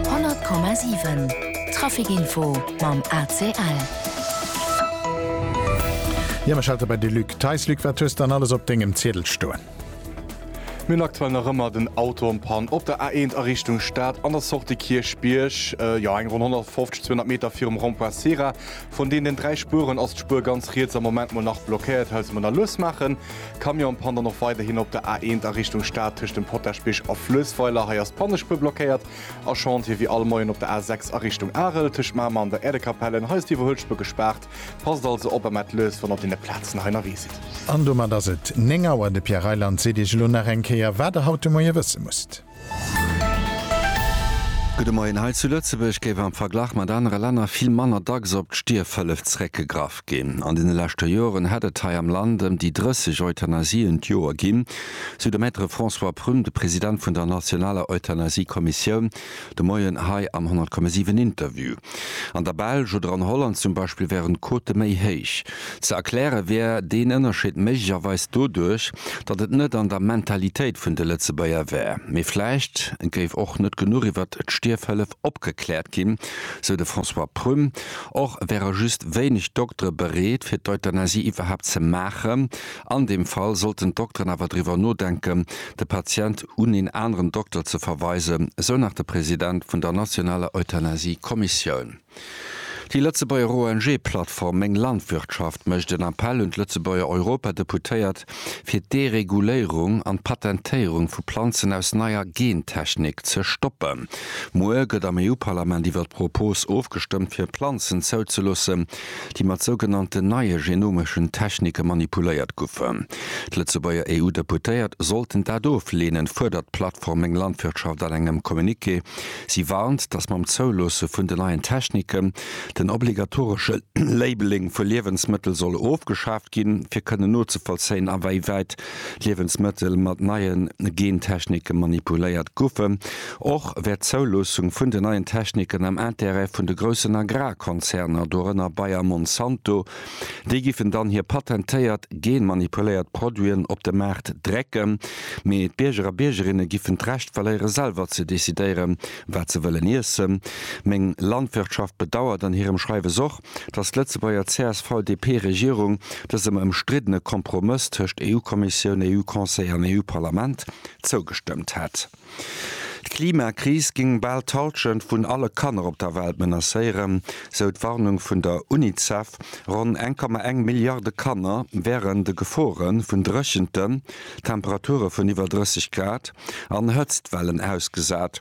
100,7 Trafic-Info mam ACL. Jo, mir schalte bei de Luc Theis. Luc, wat hues de dann alles op dengem Ziedel stoen? Mir hunn aktuell nach ëmmer den Auto en panne op der A1 a Richtung Stad an der Sortie Kierchbierg. Jo, eng ronn 150, 200 Meter virum Rond-point Cera. Vun deenen dräi Spueren ass d'Spur ganz riets am Moment mol nach blockéiert. Hëlls mer nach lues maachen. Camion pannt dann och weiderhin op der A1 a Richtung Stad tëscht dem Potaschbich a Fluessweiler. Hei ass d'Pannespuer blockéiert. A Chantier wéi all Moien op der A6 a Richtung Arel tëscht Mamer an der Äerdekapellen. Hei ass d'Iwwerhuelspur gespaart. Passt also op a maacht lues, wann der op deene Plazen hei ënnerwee sidd. An domat ass et 9 Auer. De Pierre Reyland seet Iech elo nach eng Kéier, wat Der haut de Moie wësse musst. Gudde Moien. Hei zu Lëtzebuerg géif am Verglach mat anere Länner vill manner dacks op d'Stierfhëllef zeréckgegraff ginn. An deene leschte Joren hätt et hei am Land ëm déi 30 Euthanasien d'Joer ginn, sou de Maître François Prum, de President vun der nationaler Euthanasie-Kommissioun, de Moien hei am 100,7 Interview. An der Belsch oder an Holland zum Beispill wären d'Quote méi héich. Ze erkläre wär deen Ënnerscheed méiglecherweis doduerch, datt et net an der Mentalitéit vun de Lëtzebuerger wär. Mee vläicht géif och net genuch iwwer d'Stierfhëllef opgekläert ginn, sou de François Prüm. Och wäre just wéineg Doktere bereet, fir d'Euthanasie iwwerhaapt ze maachen. An deem Fall sollten d'Dokteren awer driwwer nodenken, de Patient un een aneren Dokter ze verweisen, esou nach de President vun der nationaler Euthanasie-Kommissioun. Déi Lëtzebuerger ONG-Plattform Meng Landwirtschaft mécht en Appell un d'Lëtzebuerger Europadeputéiert, fir d'Dereguléierung an d'Patentéierung vu Planzen aus neier Gentechnik ze stoppen. Muer gëtt am EU-Parlament iwwer d'Propos ofgestëmmt, fir Planzen zouzeloossen, déi mat sougenannten neie genomeschen Technike manipuléiert goufen. D'Lëtzebuerger EU-Deputéiert sollten dat ofleenen, fuerdert d'Plattform Meng Landwirtschaft an engem Communiqué. Si warnt, datt mam Zouloosse vun den neien Techniken den obligatoresche Labeling vu Liewensmëttel soll ofgeschaaft ginn, fir kënnen nozevollzéien, aweiwäit Liewensmëttel mat neie Gentechniken manipuléiert goufen. Och wär d'Zouloossung vun den neien Techniken am Intérêt vun de groussen Agrarkonzerner, dorënner Bayer Monsanto. Déi giffen dann hir patentéiert genmanipuléiert Produiten op de Maart drécken. Mee d'Bierger a Biergerinne giffen d'Recht verléiere selwer ze decidéieren, wat se wëllen iessen. Meng Landwirtschaft bedauert an hirem Schreiwes och, datt d'Lëtzebuerger CSV-DP-Regierung dësem ëmstriddene Kompromëss tëscht EU-Kommissioun, EU-Conseil an EU-Parlament zougestëmmt hätt. D'Klimakris géing bal d'Hallschent vun alle Kanner op der Welt menacéieren, sou d'Warnung vun der Unicef. Ronn 1,1 Milliarde Kanner wären de Gefore vun Dréchenten, Temperature vun iwwer 30 Grad an Hëtztwellen ausgesat.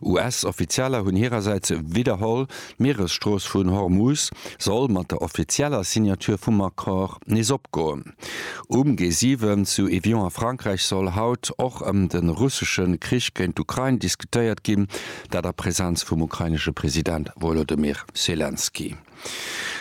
US-Offizieller hunn hirersäits widderholl, d'Mieresstrooss vun Hormuz soll mat der offizieller Signature vum Accord nees opgoen. Um G7 zu Evian a Frankräich soll haut och ëm de russesche Krich géint d'Ukrain diskutéiert ginn, dat a Presenz vum ukrainesche President Wolodymyr Selenskyj.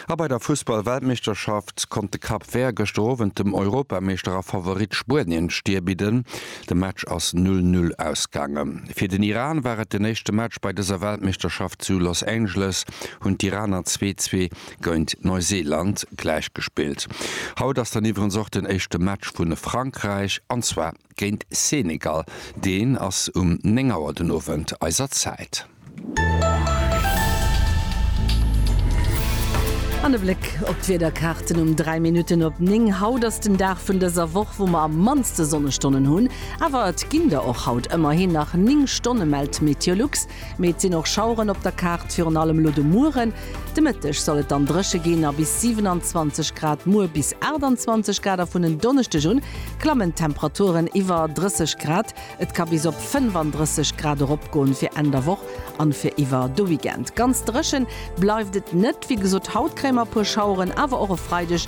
A bei der Fussball-Weltmeeschterschaft konnt de Cap Vert gëschter Owend dem Europameeschter a Favorit Spuenien d'Stir bidden. De Match ass 'null null' ausgaangen. Fir den Iran war et den éischte Match bei dëser Weltmeeschterschaft. Zu Los Angeles hunn d'Iraner zwee zwee géint Neuseeland gläichgespillt. Haut ass dann iwwerens och den éischte Match vu Frankräich, an zwar. Géint Senegal, deen ass um 9 Auer den Owend eiser Zäit. An e Bléck op d'Wiederkaarten um 3 Minutten op 9. Haut ass den Dag vun dëser Woch, wou mer am mannste Sonnestonnen hunn. Awer et ginn der och haut ëmmerhin nach 9 Stonne, mellt Meteolux. Mee et sinn och Schaueren op der Kaart, virun allem elo de Mueren. De Mëtteg soll et dann dréche ginn a bis 27 Grad, muer bis 28 Grad a vun en Donneschdeg un klammen d'Temperaturen iwwer 30 Grad. Et ka bis op 35 Grad eropgoen fir Enn der Woch an fir iwwer de Weekend. Ganz dréchen bleift et net. Wéi gesot, haut kréie mer e puer Schaueren, awer och e Freideg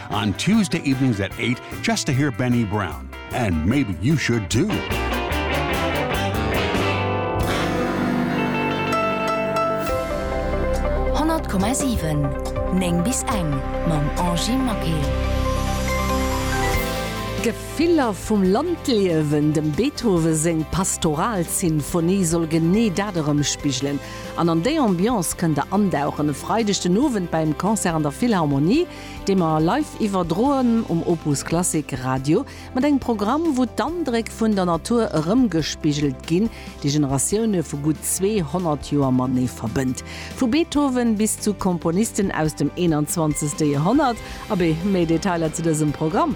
On Tuesday evenings at eight just to hear Benny Brown and maybe you should too. Honnert Komma siwen, néng bis eng mam Angie Maquet. D'Gefiller vum Landliewen, Dem Beethoven seng Pastoralsinfonie soll genee dat erëmspigelen an an déi Ambiance kënnt der andauchen e Freideg den Owend beim Concert an der Philharmonie. dee mer live iwwerdroen um Opus Klassik Radio, mat engem Programm, wou d'Andréck vun der Natur erëmgespigelt ginn, déi Generatioune vu gutt 200 Joer matenee verbënnt. Vu Beethoven bis zu Komponisten aus dem 21. Joerhonnert. Abee, méi Detailer zu dësem Programm